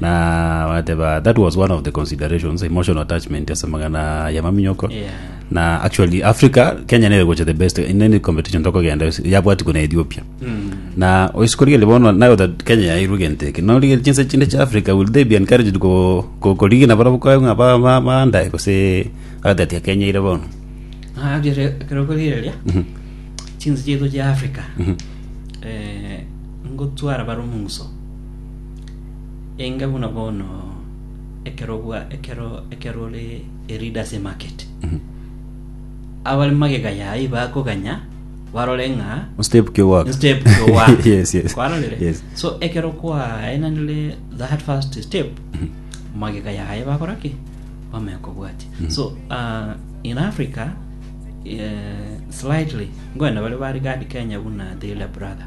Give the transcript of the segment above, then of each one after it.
Na bagateba that was one of the considerations emotional attachment ase amagana ya maminyoko Yeah. na actually Africa Kenya nere gocha the best in any competition tokogenda yabwati kuna Ethiopia na oisikorigeri bono now that Kenya yairwe gento eke norigeri chinse chinde cha Africa will they be encouraged ko ko- korigina barabwo kwa ng'a ba- ba- baandae gose agatati ya Kenya ire bono Ah, abia re- ekero okorigereria chinse chiaito chia africa eh, ngotwara bare omonguso Inga buna bono ekero bwa ekero ekero ore erida ase market abare magega yaye bakoganya barore ng'a step kio gwaka step to one Yes, yes. kwarorire Yes. so ekero kwaenanire that first step magega yaye bakora ki bamaya kobwatia so uh, in africa uh, slightly ngoenda bare bari gadi kenya buna the elder brother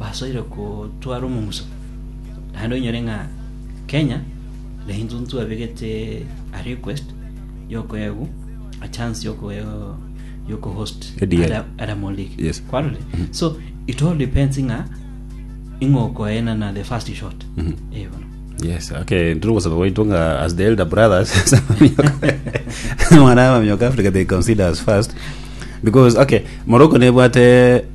basoire kotwara omomuso, naende onyore ng'a Kenya na intwe ntwabegete a request yokoegwa a chance yoko yoko host Edier. Ada- Adam League. Yes. Kwarore? So it all depends ng'a ing'okoena na the first shot. Eh, bono. yes okay ndiri gosaba gwaitwa nga as the elder brothers mwana mamioka africa they consider us first because okay morocco nebwate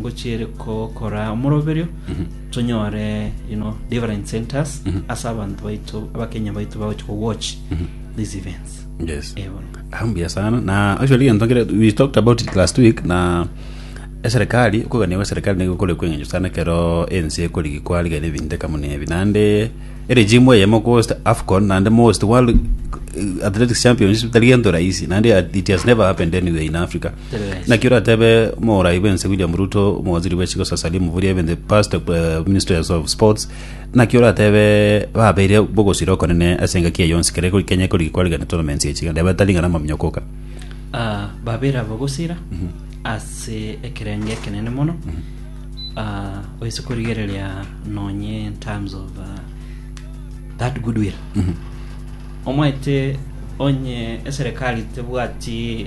ngochiere gokora omoroberio tonyore you know, different centers ase abanto baito abakenya baito bagochi ko watch these events yes Eh, bono. hambia sana na actually gento nkere we talked about it last week na eserikali okogania gwa serikali nigo kore kweng'encho sana ekero ense ekorigi kwarigania ebinto ekamo na ebi naende eregimu eye mokohost afcon naende mohost world eh, athletics championship tari gento rahisi naende it has never happened anywhere in africa Naki oratebe morai bwense William Ruto omowaziri bwe chigo sasa limu boria ebente past eh, ministers of sports naki oratebe babeire bogosira okonene ase engaki eye yonsi kere kori kenya kori kwarigana tournaments echi gende batari ng'ana maminyo koka Ah, babere abagosira ase ekerenge ekenene mono Ah, oise korigereria nonye in terms of ah, that goodwill omwete onye eserikali tebwati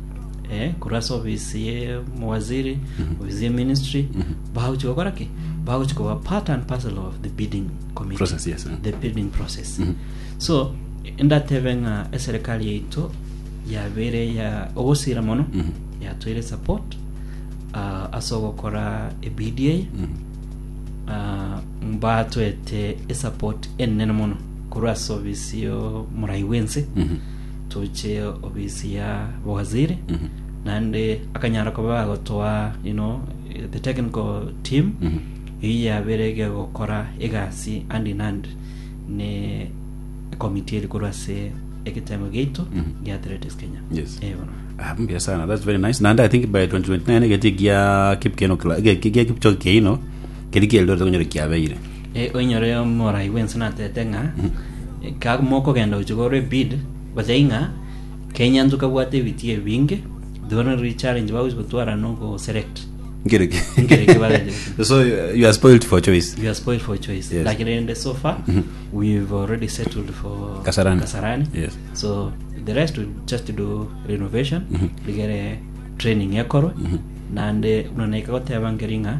eh, korwa ase ofisi ye mowaziri ofisi ye ministry bagochi gokora ki bagochi koba part and parcel of the bidding committee Process, yes, eh. the bidding process Mhm. so ndatebe ng'a eserikali yaito yabere ya ogosira mono Mhm. yatwere support uh, ase ogokora ebidi eye Mhm. Ah, mbatwete esupport enene mono korwa ase ofisi yo morai bwense Mhm. toche ofisi ya bowaziri naende akanyara koba agotoa you know, the technical team eye yabere egegokora egasi hand in hand ne ekomiti eri korwa ase egetengo giaito gia athletics kenya Yes. Eh, bono. Ah, mbuya sana that's very nice naende i think by 2029 egeti gia kipkeno Cla- ge- ge- gia kipchoge keino keri kieldoret konyora kiabeire Oinyore omorai bw'ense natete ng'a kamokogenda gochia korwa Ebid, gosai ng'a kenyanso kabwate ebitii ebinge, thero nero richallenge bagochi gotwara no go select. Nkere ki? Nkere ki bagache gotwara. So you are spoiled for choice. You are spoiled for choice. Yes. Lakini rende so far we've already settled for Kasarani. Kasarani. Yes. So the rest we just do renovation rigere training ekorwe nande buna naika goteba nkeri ng'a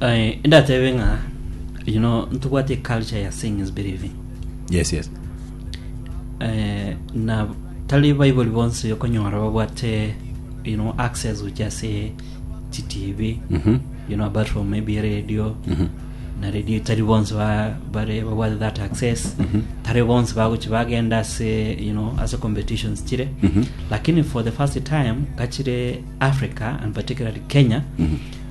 Eh, ndatebe ng'a you know ntobwate culture ya seeing is believing yes yes eh, na tari baibuli bonsi okonyora babwate you know access gochia ase chitv Mhm. you know apart from maybe radio Mhm. na radio tari bonsi ba- bare babwate that access Mhm. tari bonsi bagochi bagenda ase you know ase competitions chire Mhm. lakini for the first time gachire africa and particularly kenya Mhm.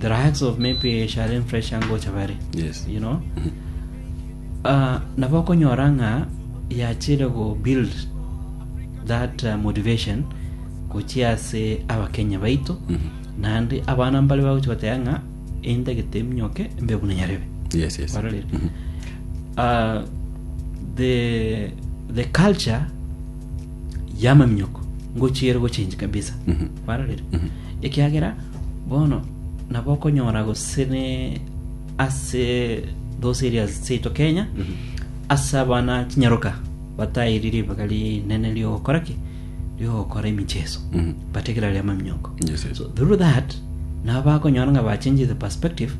the likes of maybe Shalem Fresh angocha bare Yes. you know uh, nabo okonyora ng'a yachire go build that uh, motivation gochia ase abakenya baito Mhm. naende abana mbare bagochi goteba ng'a endagete eminyoke mbe buna nyarebe Yes, yes. Warorire? Mhm. uh, the the culture yamaminyoko ngochiere gochenji kabisa Mhm. barorire, ekiagera bono nabo okonyora gose ne ase those areas chiaito Kenya ase abana chinyaroka batairi ribaga rinene riogokora ki riogokora emicheso Mhm. bategerari amaminyoko Yes, yes. so through that nabo bakonyora nga bachange the perspective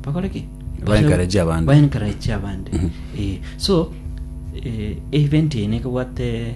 bakore ki Ba encourage abande. Ba encourage abande Eh, so eh, event eye nekobwate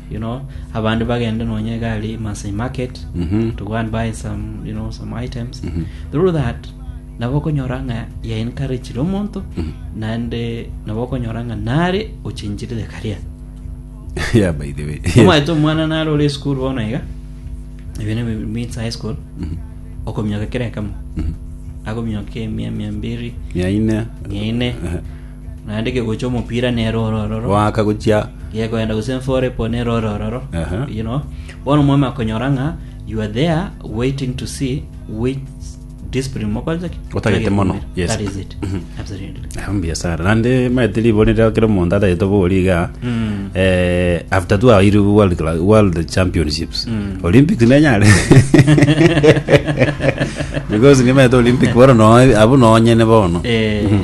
you know, abande bagende nonya iga aria Maasai Market Mhm. to go and buy some, you know, some items Mhm. through that nabo okonyora ng'a ya encouragire omonto Mhm. naende nabo okonyora ng'a nare ochenchirire karia yeah, by the way. Yes. omaete omwana nare ore esukuru bono iga ebi ni means high school Mhm. okominyoka kera ekemo Mhm. akominyoka emia mia mbiri Mia ine. mia ine Aha. Naende kegocha omopira nere ore ororo, Goaka gochia gekoenda gose enfore po nere ore ororo, Aha. you know. Bono omwami akonyora ng'a you are there waiting to see which discipline mokorete ki? Otagete mono, Mogekumira. yes. That is it. Mhm. Absolutely. Ah, mbuya sana nande maete libori rero kero omonto atagete obori iga Mm. eh, after two aire world, Cla- world championships Mm. olympics nenyare because nimaete olympic bono no- abo nonyene bono Eh, Mhm.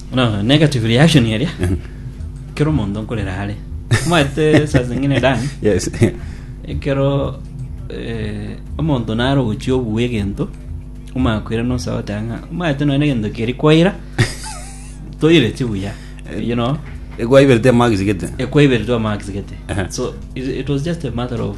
No, negative reaction eria kero omonto nkorera are mwete saa zingine dani yes ekero eh, omonto nare ogochia obua egento omakwira nosa otanga mwete nonya egento keri kwaira toireti buya you know egwaiberete amagisigete ekwaiberi to max gete Aha. so it, it was just a matter of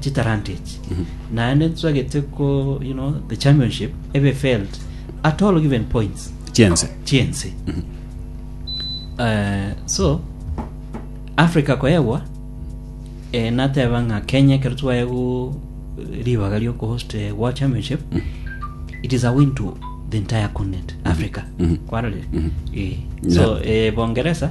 chitalanta echi naende ntwagete ko you know the championship ebe failed at all given points chiense chiense Eh, so africa koyegwa eh, nateba ng'a kenya ekero twaye go ribaga riokohost eh, world championship it is a win to the entire continent africa kwarorire Eh, so eh, bongeresa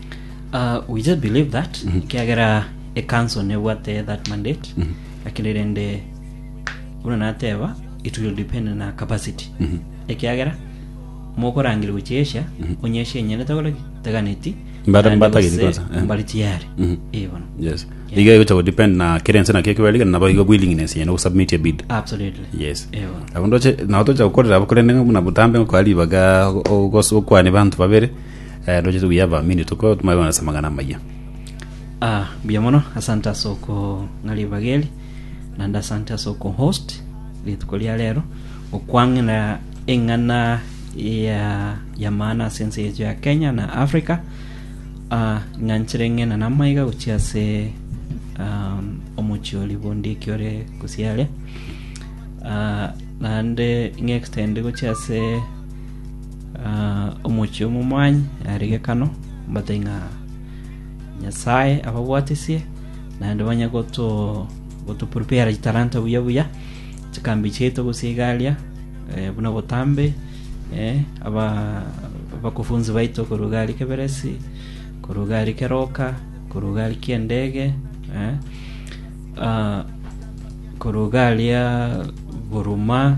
Uh, we just believe that ekiagera ekanso nebwate that mandate lakini rende buna nateba it will depend na capacity ekiagera mokorangire gochia asia onyesha enyene tagore taganeti Mbata- naende mbatageti gose kwanza, eh. mbari tiare Mhm. Eh, bono yes Yeah. iga igocha godepend na kera ense naki ekiberige nabo igo willingness yene gosubmit a bid absolutely yes Eh, bono abundu oche nao tocha gukorera abo korende ng'a buna botambe ngokwa ribaga ogos- okwane banto babere Eh, roche tuguya abamini tuko tumare kona ase amang'ana amayia. Ah, mbuya mono asante ase okong'aria ebageri naende asante ase okohost rituko ria rero okwang'ina eng'ana ya ya maana ase ense yaito ya kenya na africa Ah, ng'anchire ng'ina namaiga gochia ase um, omochi ori bondiki ore gosiaria Ah, naende ng'extend gochia ase Omochie omomwaanyi are gekano, mbatai ng'a Nyasae ababwatesie, naende banye gotoprepare chitalanta buya buya, chikambi chiaito gose igaria buna botambe, abakufunzi baito korwa egari keberesi, korwa egari keroka, korwa egari kendege, korwa egari ya buruma.